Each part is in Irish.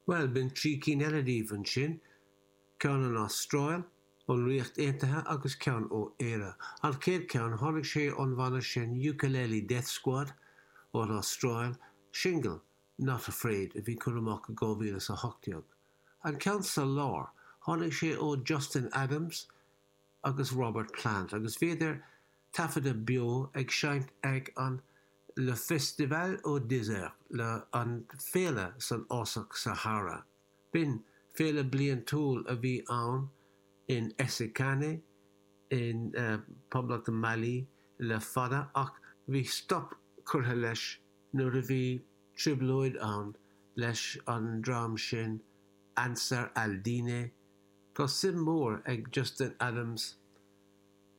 Bhuel, b'in trí cinn eile díobh ansin, ceann ón Astráil, ón Ríocht Aontaithe agus ceann ó Éirinn. An chéad cheann, tháinig sé ón bhanna sin Ukelele Death Squad ón Astráil, singil, Not Afraid, a bhí curtha amach i 2018. An ceann sa lár, tháinig sé ó Justin Adams, agus Robert Plant agus bhíodar taifeadta beo ag seinnt ag an Le Festival au Désert, An Féile san Fhásach Sahára. B'in féile bliantúil a bhí ann in Essakane i bPoblacht Mali le fada ach bhí stop curtha leis nuair a bhí trioblóid ann leis an dream sin Ansar al-Dine, Tá suim mhór ag Justin Adams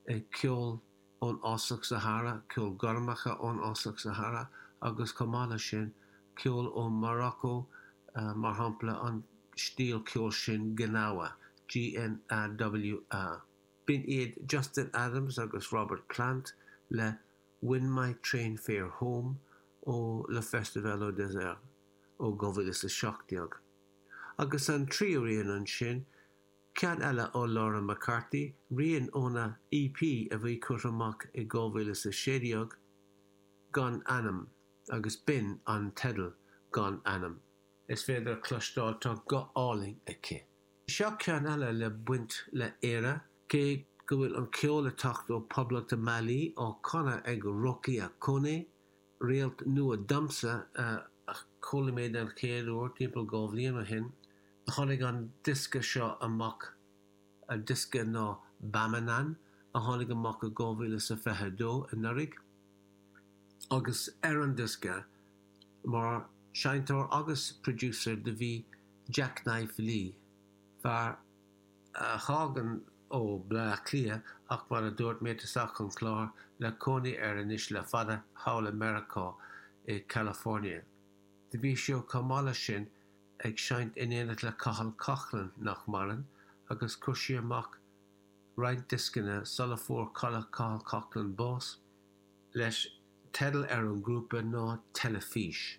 i gceol ón Fhásach Sahára, ceol gormacha ón Fhásach Sahára agus chomh maith leis sin, ceol ó Mharacó, mar shampla an stíl ceoil sin Gnawa, G-N-A-W-A. B'in iad Justin Adams agus Robert Plant le When My Train Fare Home ó Le Festival au Désert ó 2017. agus an tríú rian ansin, ceann eile ó Laura McCarthy, rian óna EP a bhí curtha amach i 2016, Gan Ainm, agus b'in an teideal, Gan Ainm. Is féidir a chloisteáil, tá guth álainn aici. Seo ceann eile le baint le Éire, cé go bhfuil an ceol ag teacht ó Poblacht Mali, á canadh ag Rokia Koné, Réalt nua domsa, a chuala mé den chéad uair timpeall dhá bhliain ó shin. Tháinig an diosca seo amach, diosca ná Bamanan, a tháinig amach i 2022, anuraidh, agus ar an diosca, mar sheinnteoir agus producer, do bhí Jacknife Lee, fear a thagann ó Bhleá Cliath ach mar a dúirt mé cheana sa chlár le cónaí air anois le fada, thall i Meiriceá, i California. Do bhí sé chomh maith leis sin ag seinnt in éineacht le Cathal Coughlan, nach maireann, agus chuir siad amach roinnt dioscanna sula fuair Cathal Coughlan bás, leis, teideal ar an ghrúpa ná Telefís.